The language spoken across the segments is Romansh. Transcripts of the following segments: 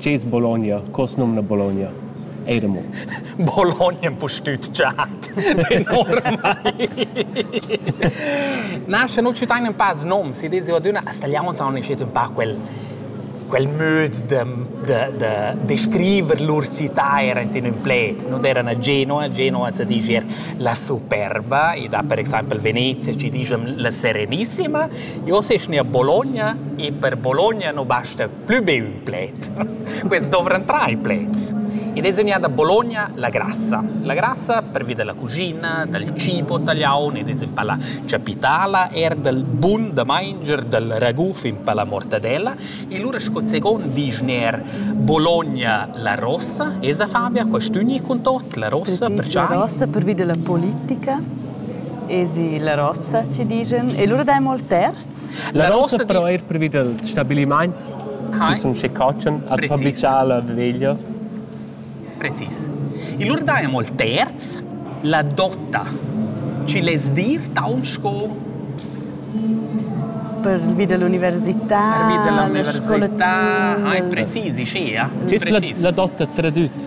Tgei es Bologna? Co as numna Bologna? Eir amo. Bologna empustüt giat. Enormai. Na, sche nu citain ün pa noms, i desi adüna, as tagliaunts haun iniziet ün pa quel quel möd da da da descriver lur città era in ün pled. Non erano Genova, Genova si dice la superba, e da per exaimpel Venezia ci dicem la serenissima. Io se a Bologna e per Bologna non basta plü be ün pled. Quels dovran trais pleds. Ed es vegnida da Bologna la grassa. La grassa pervi da la cuschina, dal cibo tagliaun ed es in pa la chapitala, eir dal bun da manger dal raguf in pa la mortadella. E lura sco second disch ner Bologna la rossa, esa Fabia, quest'üni cun tot la rossa Precis, la rossa pervi da la politica. Esi la rossa ci digen. E lura dai mol tert. La rossa però eir previ dals stabilimaints chi sun schi cotschen as fa brichar la veglia. Precis. Il lur daja ol terz la dotta. Chi less dir taunt sco pervi dell'università, pervi dell'università, ah, precisi, scia, precisi. la, la dotta tradüt.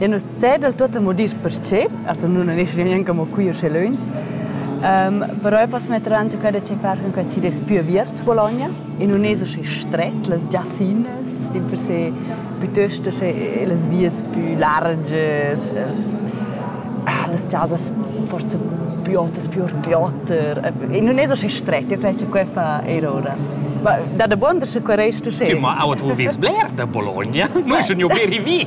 Ja nu s'sa del tuot amo dir perche, also nun es gnanc amo qui usché lönch, però eu poss metter aint quel da che far cun quel chi'd es pü aviert Bologna e nun es uschè stret, las giassinas dimpersè pütöst uschè las vias pü largias, els ah las chasas forsa pü otas, pü oter, pü oter e nun es uschè stret, io cret cha que fa eir oura. Ma da dabonder sche que resta uschè. Tü, ma our d'vo vess bler da Bologna, nu sun jo be rivì.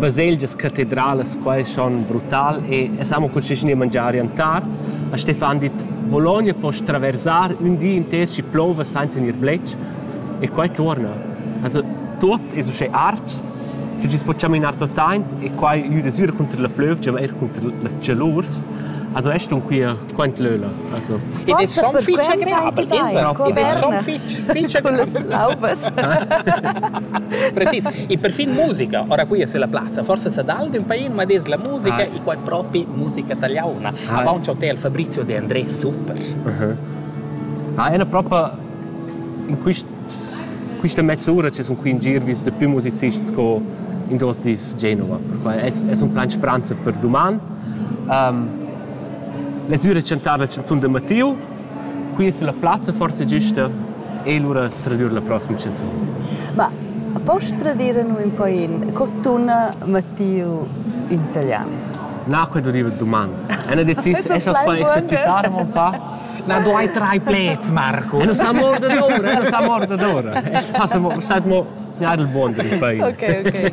Baselgias catedralas quai schon brutal e es amo cul sisgn da mangiar rientar. A Stefan dit Bologna poss traversar ün di inter schi plouva sainza gnir bletsch e quai tuorna. Also tuot es uschè ards che chi's po chaminar suot aint e quai gnüda sü cunter la plövgia ma eir cunter las tschelurs. Also es stun quia quant löla also id es schon fich agreabel ins id es schon fich fich agreabel precis e perfin musica ora qui es la plazza forse sa dal d'ün pain ma des la musica e quai propi musica italiana avanti hotel Fabrizio De André super ah è propa in quist quista mezz'ura ci sun qui in gir vis da più musicisti co in dos dis Genova. Es, es un plan speranza per doman. Um, Lezura chantar la chanzun da Mattiu, qui sulla plazza forza gista e lura tradir la prossima chanzun. Ma posso tradir nu un po in cottuna Mattiu in italiano? Na, quel duriva domani. È una decisione, esas poi exercitare un po'? Na, du hai drei plets, Marco. E non sa morda d'ora, non sa morda d'ora. Stai mo, stai mo, ja, il buon di fai. Ok, ok.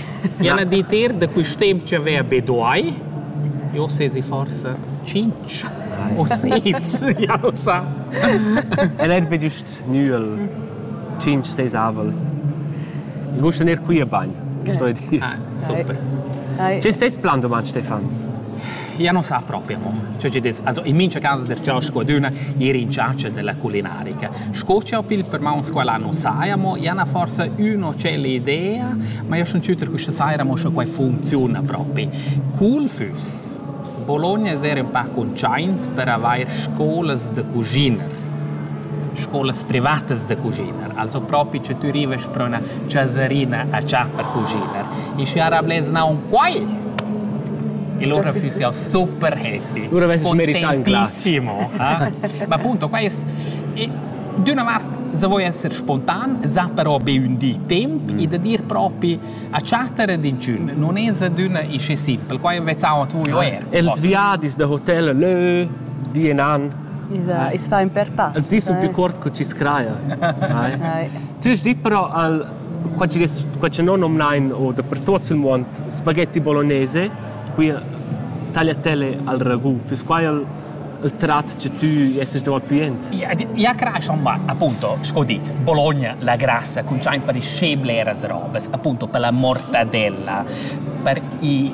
Ja na dir da quist temp chi avea be duai. Eu sezi forsa tschinch o sis, ja nu sa. El eir be güst nüel, tschinch, seis avel. Il gusta gnir quia bain, sto dir. Ah, super. Che stess plan domat, Stefan? Ja non sa proprio mo. Cioè ci des, also in mincha cas der ciò scoduna ir in charge della culinarica. Sco ciò pil per ma un scuola non saia mo, ja na forse uno c'è l'idea, ma io son ciuter questa saira mo scho quai funziona proprio. Cool füss Bologna essere un po' conciaint per avair scolas de cucina, scolas privatas de cucina. Also propi che tü rivast pro üna chasarina a chà per cuschiner. E schi ara blers naun quai! E lura füss jau super happy. Lura vesses merità Contentissimo. Eh? Ma appunto, qua è... D'una vart, se vuoi essere spontan, sa però be ün di temp mm. e da dir propi a chatter ed inchün non es adüna isce simpel. Qua vezzaun a tu er. Els viadis da hotel lö, di e nan. I's fa ün per pass. Els dis sun più cuort co chi's craja. Tü hast dit però al qua chi qua chi non nomnain o dapertuot sul muond spaghetti bolognese, qui tagliatele al ragù. Füss quai il il trat che tu esses dal pli jent? Ja crascha ma appunto, sco dit, Bologna la grassa con giain per i scebleras robes, appunto per la mortadella, per i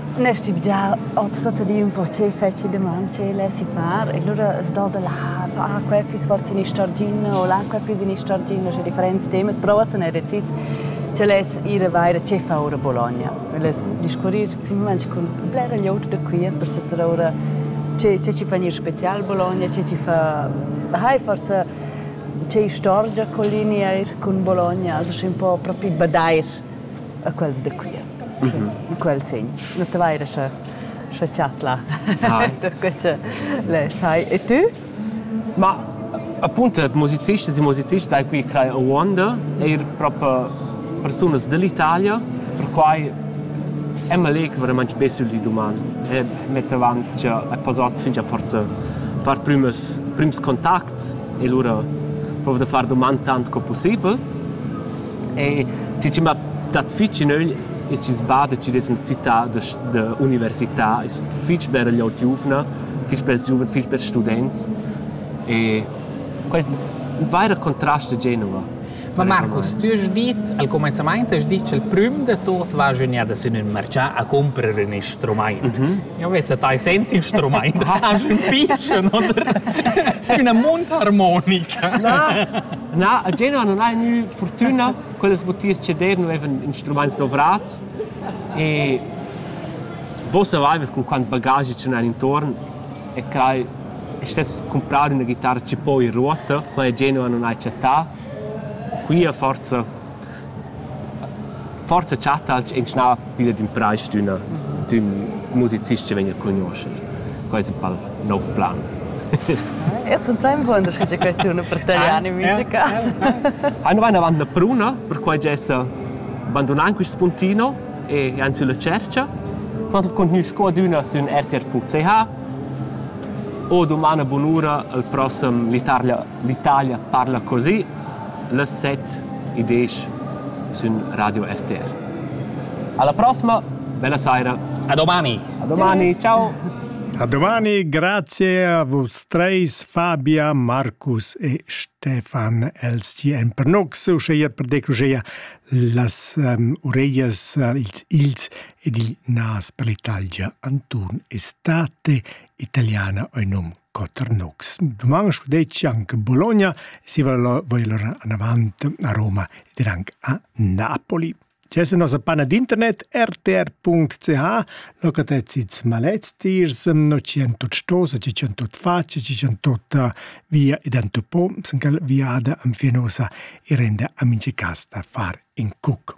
Ne stimm gia oz tuotta di ün po che fetschi daman, che lesi far e lura s'do da la far que füss forsa in istorgina o là que füss in istorgina scu differents temas, però uossa n'he decis che less ir a vair che fa our a Bologna. Less discurrir simplamaing cun blera glieud da qui per chattar oura che che chi fa gnir special a Bologna, che chi fa hai forsa che istorgia collinia eir cun Bologna, also schi ün po propi badair e quels da Cuira. In quel segn. Nu te vaira scha scha chat là. Tutto che le sai. E tu? Ma appunto musicisti e musicisti hai qui crai a Wanda, eir proprio persunas dall'Italia, perquai Emma Lake veramente be sul di doman e mette avanti che è passato fin già forza far primus prims contacts e lura provo da far domand tant co possibel E tgi chi m'ha dat fich in ögl es il sbà da chiuder in città da università. Es fich beragliaud giuvna, fich bels giuvens, fich bels students. E quai es ün vaira contrast a Genova. Ma Marcus, tü hast dit al cumainzamaint hast dit cha'l prüm da tuot va gnüdadas in ün marchà a cumprer ün instrumaint. Mm -hmm. Jau vezz a tai senza instrumaint, hast ün pischen oder üna munt harmonica. Na, Na, a Genua non ha gnü fortüna quellas motivs che der nu evan instrumaints dovrats e vos savaivat con quant bagagi ce n'ha intorn e crai e stess comprare una chitarra che poi in ruota, quella Genua non ha chattà. Qui a forza Forsa chattalch inschnà pilla d'impraisdüna d'ün musicist chi vegna a cugnuoscher. Quai es ün pal nouv plan. Eu sun plainbuon da scriver quai tun per talian in mincha cas. Hai nu vain avant la pruna, perquai giessa bandunand quist spuntino e jand sülla tschercha. Quant contgnüsch co adüna sün rtr.ch o dumana bunura al prossem l'Italia l'Italia parla così Las set e diesch sün Radio RTR. Alla prossima. Bella saira. A domani. A domani. Ciao. A domani, grazie a vos treis, Fabia, Marcus e Stefan LCM per nox, uscheia per decruscheia las um, ureias, uh, ils ils ed il nas per l'Italia Anton Estate, italiana oinom Quatter nocs. Duman sco detg anche Bologna si voler anavant a Roma ed anche a Napoli. C'è la nostra panna d'internet rtr.ch, locatezits maleztirs, no 108 608 facce, 608 via ed antopo, sencal viada anfinosa e rende amici casta far in cuc.